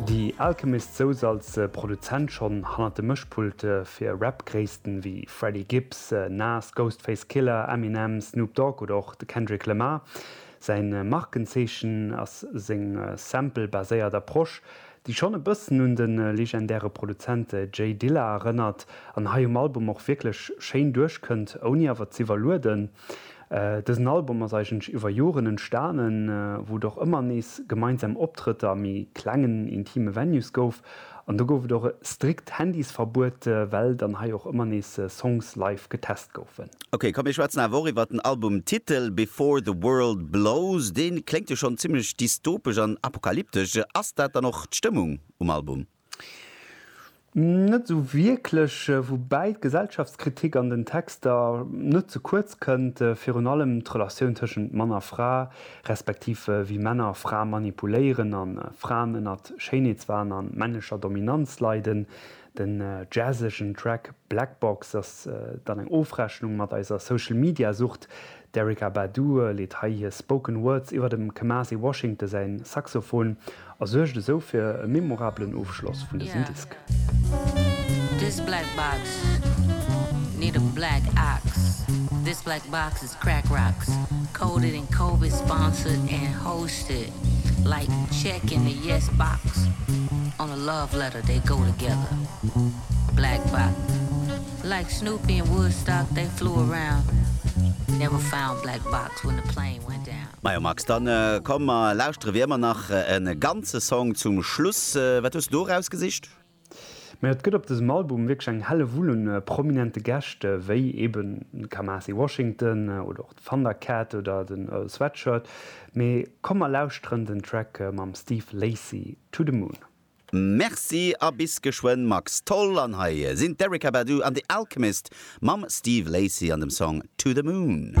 Die Alchemist souz als Produzent schonn hannert de Mëschpulte fir Rap-Gréissten ewéi Freddie Gibbs, Nas, Ghostface Killah, Eminem, Snoop Dogg oder och de Kendrick Lamar. Säi Markenzeechen ass seng Sample-baséiert Approche, déi schonn e bëssen un de legendäre Produzent Jay Dilla erënnert an hei um Album och wierklech schéin duerchkënnt, ouni awer z'iwwerlueden. Dësen Album ass eigentlech iwwer Joren entstanen, wou et och ëmmer nees gemeinsam Optrëtter a méi klengen, intime Venues gouf. An do gouf et och e strikt Handysverbuet, well dann hei och ëmmer nees Songs live getest goufen. Ok, komm mir schwätzen awer och iwwert den Albumtitel Before the World Blows. Dee kléngt jo schonn zimmlech dystopesch an apokalyptesch. Ass dat dann och d'Stëmmung um Album? Net esou wierklech, woubäi d'Gesellschaftskritik an den Texter net ze kuerz kënnt, virun allem d'Relatioun tëschent Mann a Fra, respektiv wéi Männer Frae manipuléieren a Fraen ënnert Schéinheetswahn a männlecher Dominanz leiden. Den jazzegen Track Black Box ass dann eng Ofrechnung mat eiser Social-Media-Sucht, D'Erykah Badu leet hei hir Spoken Words iwwer dem Kamasi Washington säin Saxophon a suergt esou fir e memorabelen Ofschloss vun dësem Disk. Like Snoopy in Woodstock they flew around Never found black box when the plane went down. Majo Max, dann komm mer lauschteren wéi ëmmer nach en ganze Song zum Schluss. Wat hues du do erausgesicht? Majo et gëtt op dësem Album wierklech eng Hellewull un prominente Gäscht wéi eben de Kamasi Washington oder och d'Thundercat oder den Earl Sweatshirt. Mee komm mer lauschteren den Track mam Steve Lacy To The Moon. Merci a bis geschwënn Max. Toll, an hei sinn d'Erykah Badu an The Alchemist mam Steve Lacy an dem Song To The Moon.